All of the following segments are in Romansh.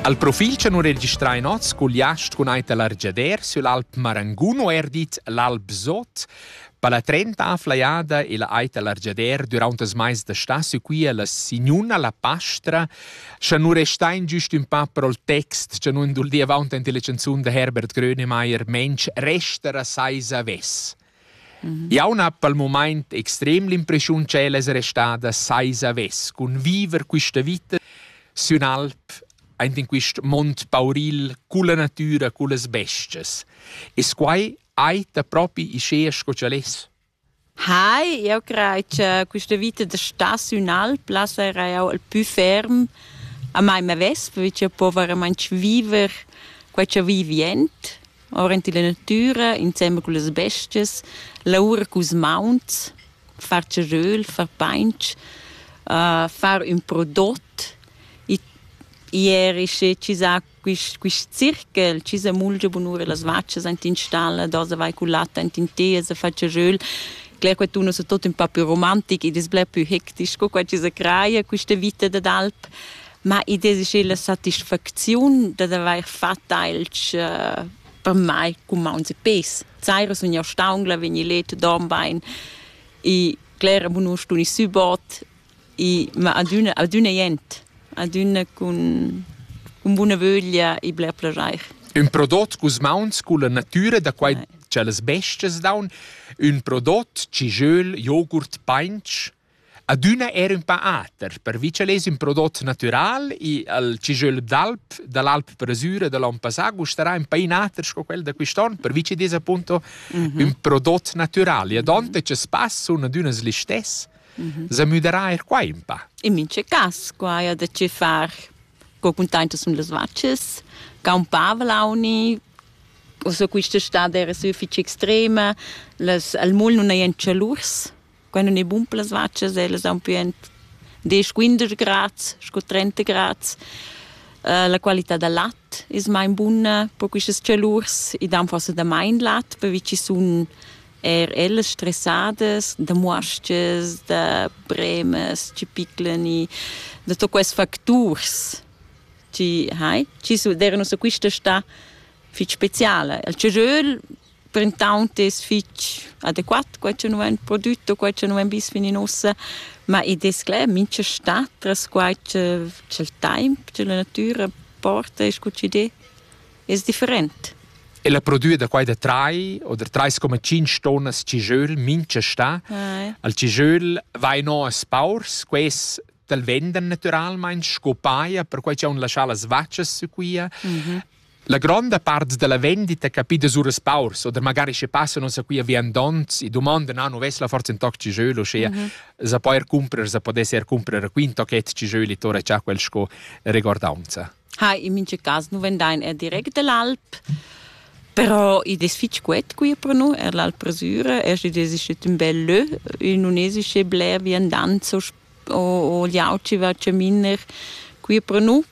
Al profil cha nu registrai hoz cugliast cun ait da l'argiader sül Alp Marangun o eir dit l'Alp Sot. Per la trenta afflajada e la ait da l'argiader düraunt as mais da stà sü quia la signuna la pastra, scha nu restain güst ün pa pro'l text cha nu induldia avaunt ante le chanzun da Herbert Grönemeyer «Mensch, resta ra seis avess». Jau n'ha pel mumaint extrem l'impreschiun ch'el es restada saisa vess cun viver quista vita sün alp aint in quist mond pauril culla natüra, cullas bes-chas. Es quai eir propi uschea sco ch'el es? Hai, eu craj cha quista vita da star sün alp là sarà eau il pü ferm a mai m'avess, perche eu po veramaing viver quai cha vivi jent. aurent illa natüra insembel cullas bestias, laura culs mauns, far ceröl, far painch, far ün prodot. Ieri schi chi sa quist quist circhel, chi sa mulgia bunura las vachas aint in stalla, dasa vai cul lat aint in teas a far ceröl. Cler quattun es tot ün pa più romantic ed es bler pü hectic sco qua chi sa craja quista vita dad alp. Ma i desi la satisfacziun dad avair fat ailch uh, per mai cumaunz e pes. Saira sun jau staungla, vegni let, dorm bain e clera bunur stun i subot e ma adüna, adüna jent, adüna cun, cun buna vöglia e bler plajair. Ün prodot cus mauns culla natüra da quai Nei. tschellas bestias daun, ün prodot, cigiöl, jogurt, painch, Adüna era ün pa ater, pervi cha lez ün prodot natüral i al cijöl d'alp da l'alp Presüra da l'on passà gustarà ün pa inater sco quel da quist'on, pervi chi dess appunto ün prodot natüral. E adonta cha spass sun adüna listess, s'ha müderà eir qua ün pa. In mincha cas qua haja da che far co cuntaintas sun las vachas, campava l'auni, o so quist'estada era sü fich extrema, las al mol nun hajan chalurs Quai nun è bun per las vachas, ellas haun pü ent desch, quindesch grads scu trenta grads. La qualità da lat es main buna per quistas chalurs. I dan forsa damain lat pervi chi sun eir ellas stressadas da muos-chas, da bremas chi piclan i, da tuot quels facturs chi hai, chi su d'eira nus a quista stà fich speciala. Il chagiöl printaunt es fich adequat quai cha nu vain prodüt o quai cha nu vain vis fin in uossa, ma id es cler mincha stat tras quai cha cha'l taimp, cha la natüra porta e scu chi'd es different. E la prodüa da quai da trai o da trais coma tschinch tonnas cijöl mincha stà, al cijöl vain o as paurs, quels t'al vendan natüralmaing sco paja per quai cha haun laschà las vachas sü quia. La gronda part dalla vendita capida suras paurs oder magari sche passan uns a qui a viandonts e domandan ah, nu vess la forza in toc ci jeu uschia mm -hmm. sa poer cumprer sa podesse er cumprer quin tochet ci jeu li tora cha quel sco recordaunza ha in mince cas nu vendain er direct dell'alp però i des fitg quet qui pro nu er l'alpresura er si des ist un bel lö un unesische bler viandanzo o o liauci va cheminer qui pro nu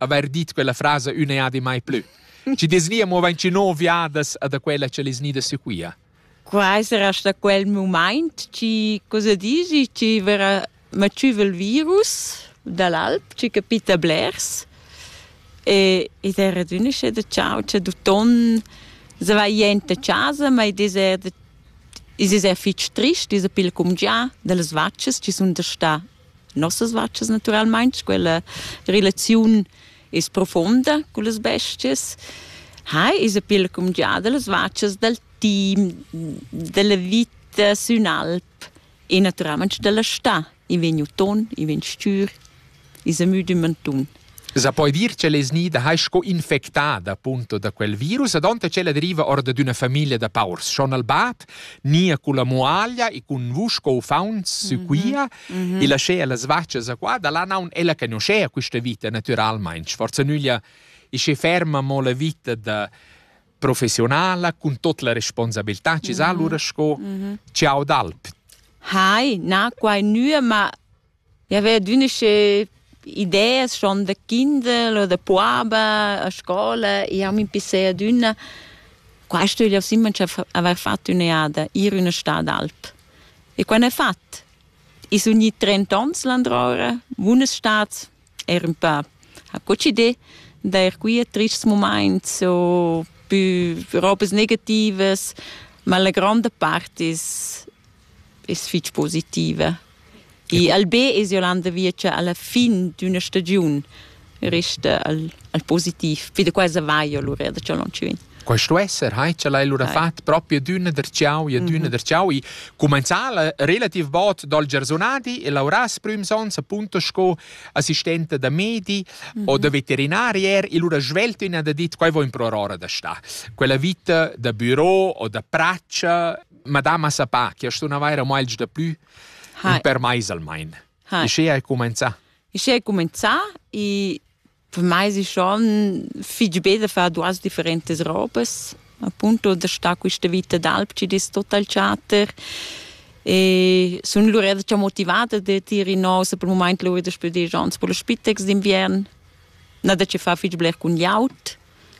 haver dit quella frasa ün'eadi mai plü. Ci desvia mo vainci no viadas a da quella che les nida sequia. Quai sarà sta quel moment, ci cosa dici, ci verrà macivel virus dall'alp, ci capita blers. E ed era d'unisce de ciao, c'è du ton se vai jente casa, ma ed er is es er fitg trist, is a pil cum già, delles vacces ci sun da sta nossas vachas naturalmein quella relaziun is profonda con las bestias ha is a pil cum giada las vachas dal team della vita sün alp e naturalmente della sta i vegn uton i vegn stür i sa müd in mantun Sa poi dir che lez nida hai sco infectada punto da quel virus ad onte che la deriva orda d'una famiglia da paurs schon al bat nia con la muaglia e con vusco ufaunts sequia e laschea las vaccias a qua da là naun ella conoscea questa vita naturalmente forza nüglia e che ferma mo la vita da professionala con tot la responsabilità ci sa allora sco ciao d'alp Hai, na quai nua, ma I haveva adüna sche ideas schon da kindel o da puaba a scola. Jau m'impissei adüna, quaist ögl aus imma cha avair fat ün'eada, ir üna stà d'alp. E quai n'he fat. I sun gnit trent ons landroura, bunas stats, eir ün pö. Ho cocidé d'eir qui a trists mumaints o pü robas negativas, ma la gronda part es es fich positiva. I Albé es jo Landa Viecha alla fin d'üna stagiun resta al, al positiv. Poi da quasi va io lura da ciò loncivin. Questo esser, hai ce l'hai lura fatto proprio d'una der ciao e d'una der ciao. E comenzà relativ bot dal Gersonadi e lauras prüms ons appunto sco assistente da medi o da veterinarier e lura svelto in da dit quai vo in pro ora da sta. Quella vita da büro o da praccia madama sa pa che sto na vaira meglio da plü Hai. per mais almain. Hai. E sche hai comenzà? E sche hai comenzà e per mai è schon fig be da fare duas differentes robes. Appunto da sta questa vita d'alp ci total chatter. E sono lura già motivata da dire no, se per il momento lo vedo spiegare gens per lo spitex d'inviern. Na da ci fa fig bler con iaut,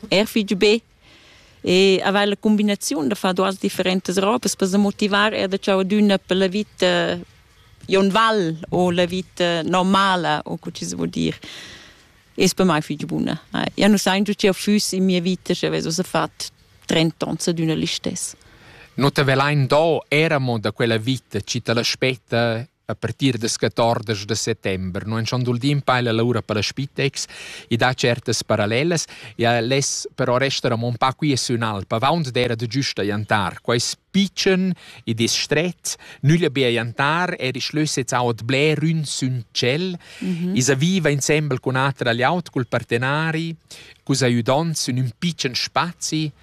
er fig be. e aveva la combinazione da fare duas differentes robes per se motivar er da ciao d'una per la vita un val o la vita normala o co ci si vuol dire es per mai fich buna eh. io non sai giù che fuss in mia vita se avesso fatto 30 ans ad una listess No te velain do eramo da quella vita, ci te l'aspetta a partir das 14 da settember non schon dul din paila l'aura per la spitex e dà certas parallelas ja les però resta mon pa qui su in alpa vaunt d'era de giusta jantar quais picen e distret nüglia bia jantar er ich lösets aut bler ün sün cel mhm. isa viva insembel con atra agli aut col partenari cus aiudont sün ün picen spazi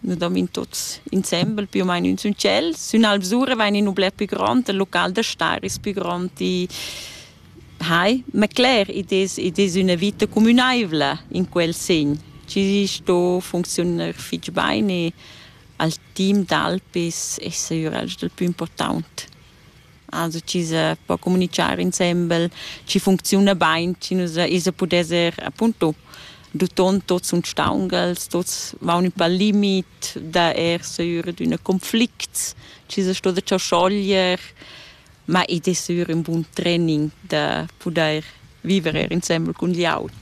Nous dormin tuts insembel più o meno in ün tschel. Sün Alvsura vain in ün bler più grond, il local da star es più grond. Hai, ma cler, id es, id es üna vita cumünaivla in quel segn. Tgi sto funcziunar fich bain e al team d'Alp es, es eir el dal pü important. Also chi sa po comunichar insembel, chi funcziuna bain, chi nus isa pudesser appunto duton tots uns staungels, tots vaun ün pal limit da er seur ad üna conflicts, chi sa sto da cho schoglier, ma id es sür ün bun training da pudair viver eir insembel cun glieud.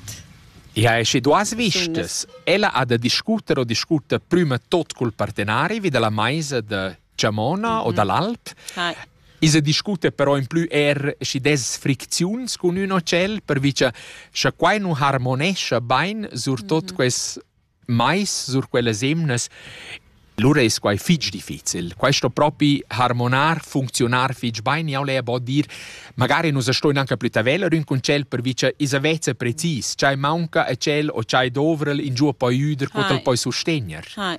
Ja, e sche duas vistas, ella ha da discuter o discuter prüma tot cul partenari vi da la maisa da Chamona o dall'Alp. Hi. I se discute però in plü er schi des fricziuns cun ün hotel, pervi cha scha quai nu harmonescha bain, surtot mm -hmm. quels mais sur quellas emnas, lura es quai fich difficil. Questo propi harmonar, funzionar fich bain, jau le po dir, magari nus stoin anche plü taveller ün con tschel, pervi cha is aveza precis, chai maunca a tschel o chai dovrel in giù poi üder, co t'el poi sustegner. Hi.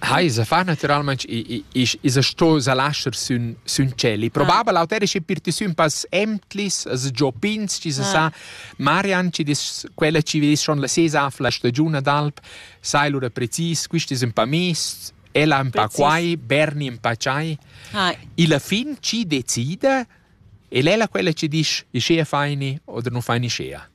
Ha, i sa fa naturalmaing, i, i, i sa sto sa lascher sün, sün tschel. Il probabel auter è schi per ti sün pas emtlis, as giò pins, chi sa sa. Marian, chi dis, quella chi vis schon la sesa la stagiun d'alp, sai lura precis, quist es ün pa mist, ella ün pa quai, Berni ün pa ciai. E la fin chi decida, el è la quella chi disch, i schea faini oder nu faini schea.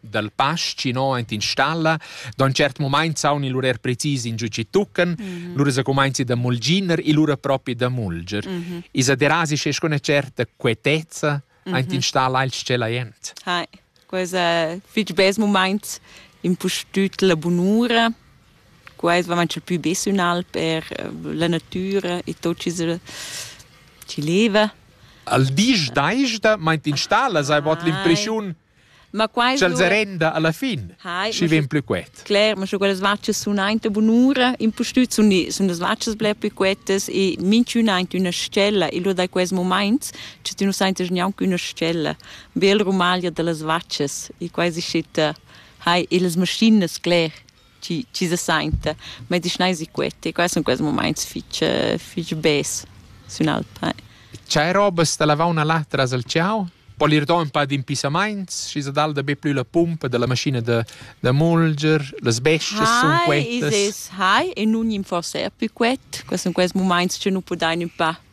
dal pass chi no aint in stalla. Da ün tschert mumaint saun il urer precis in giù chi tuccan, mm -hmm. lura se cumainzi da mulginer e lura propi da mulger. Mm -hmm. Isa derasi sche con certa quietezza mm -hmm. aint in stalla il tschella jent. Hai, quesa fich bes mumaint impustüt la bunura. Quais va manchel pü bes ünal per eh, la natüra e tot chi ci leva. Al disch daista meint in stalla sai bod ah, l'impreschiun Ma quai Sch'el so... serenda alla fin, Hai, schi vegn plü quet. Cler, ma scho quellas vaccias sun aint bunura, impustüt sun, sun las vaccias bler plü quetas e minchün aint üna stella e lur da quels momaints che tü nu saintas gnanc üna stella. Bel rumaglia da las vaccias e quai si schitta hai e las maschinas, cler. chi, chi se sainta medicinaisi queti. Quai sun quels mumaints fich, fich bes sün alp. Chai robas da lavauna là tras al ciau? Po ir do ün pa d'impissamaints, schi se dal da be plü la pumpa della maschina da, da mulger, las bestas sun quetas. Hi, Isis, hi, e nun gnimforsa er pü quet. Quai sun quels mumaints che nu pudain ün pa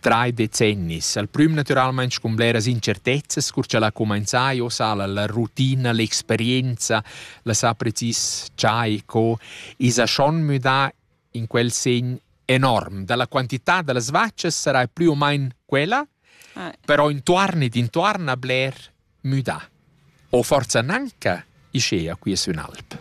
Trai decennis, al prüm natüralmaing cun bleras incertezzas, cur cha l'ha cumainzà e ossa la rutina, l'experienza, la sa precis cha e co, esa schon müdà in quel segn enorm. Da la quantità da las vachas sarai plü o main quella, però intuorn ed intuorn a bler müdà. O forsa gnanca ischea quia sün alp?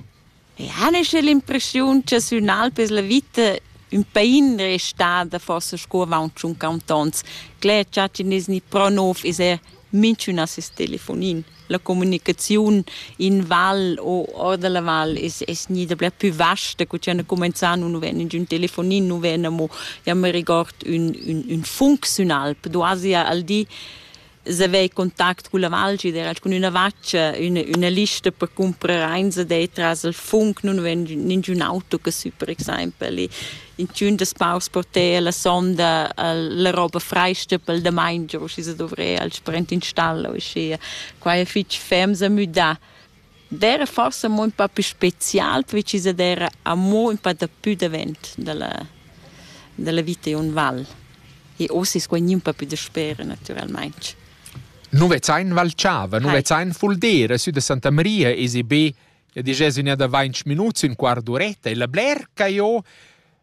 E han esser l'impreschiun cha sün alp es la vita ün pain restada forsa sco avaunt tschun cantons. Cler cha chi nes gnit pro nouv es eir minchün a seis telefonin. La comunicaziun in val o or da la val es es gnida bler pü vasta cu cha ne cumenzà nu ven ingün telefonin, nu ven amo, ja me regord, ün ün ün func sün alp. Duasi al di se avei contact cun la Valgi, era cun üna vaccia, üna, üna lista per comprar eins de tras il funk, nun ven ningiun auto che su per exempel. E in tun das paus porter la sonda la roba freista pel da main, giù si se dovrei al sprint installo, e schi. Qua è fitch fems a müdar. D'eira forsa amo ün pa pü special perche chi s'ad eira amo ün pa dapü davent da la da la vita in ün val. E uossa es quai gnü ün pa pü dasper natüralmaing. Nu vezzain Val Chava, nu vezzain Fuldera, sü da Santa Maria esi be, ja disch, es ün'eda vainch minuts, ün quart d'uretta e la blerca jo.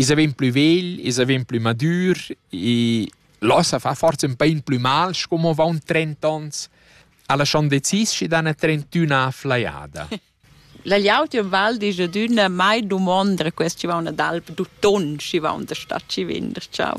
I's vegn plü vegl, i's vegn plü madür e là sa fa forsa ün pa in plü mal sco mo avaunt trent'ans, a lasciand decis schi dan a trentüna flajada. La gliautia val disch adüna mai dumonda quest chi vauna d'alp d'uton, schi vaun da sta chi vender, ciao.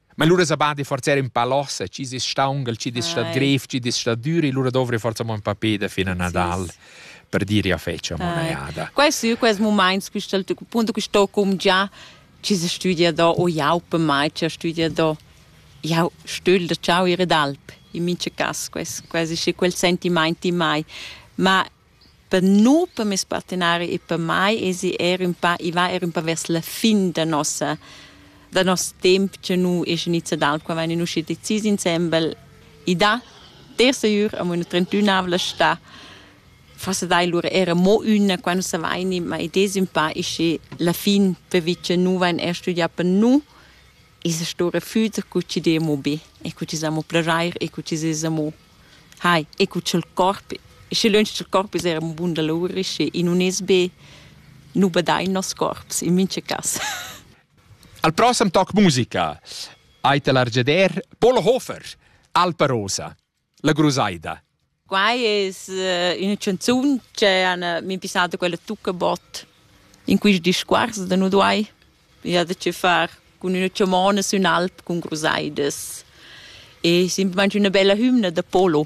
Ma lura sa badi forza in pa lossa, ci dis staungal, ci dis stat grev, ci dis stat duri, lura dovri forza mo un pa peda fin a Nadal. Sì per dire a feccia monaiada. Questi questi momenti questi punto che sto cum già ci si studia do o jau per mai ci studia do jau stöl da ciao ire d'alp in mince cas questi quasi sì quel sentimenti mai ma Per nu, per meis partenari e per mai esi eir ün pa i va eir ün po vers la fin da nossa da noss temp cha nu es inizià dal qua vain ün uschi decis insembel. I dà terza ür amo üna trentünavla stà. Forsa dai lura eir amo üna quando savaini, ma id es ün pa ischi la fin pervi cha nu vain eir studià per nu. I's stoura füt cu chi d'e amo be e cu chi s'amo plajair e cu chi s'es amo Hai, e cu cha'l corp, schi lönch cha'l corp es eir ün bun dolur, schi i nun es be nu badain noss corps in mincha cas. Al prossem toc musica hai ta l'argeder Polo Hofer, Alpa Rosa, la grusaida. Quai es uh, üna chanzun che han uh, min pissata quella Tuccabot in quist discuors da nu duai Ich hatte che far cun üna chamona sün alp cun crusaidas e simplamaing üna bella hümna da polo.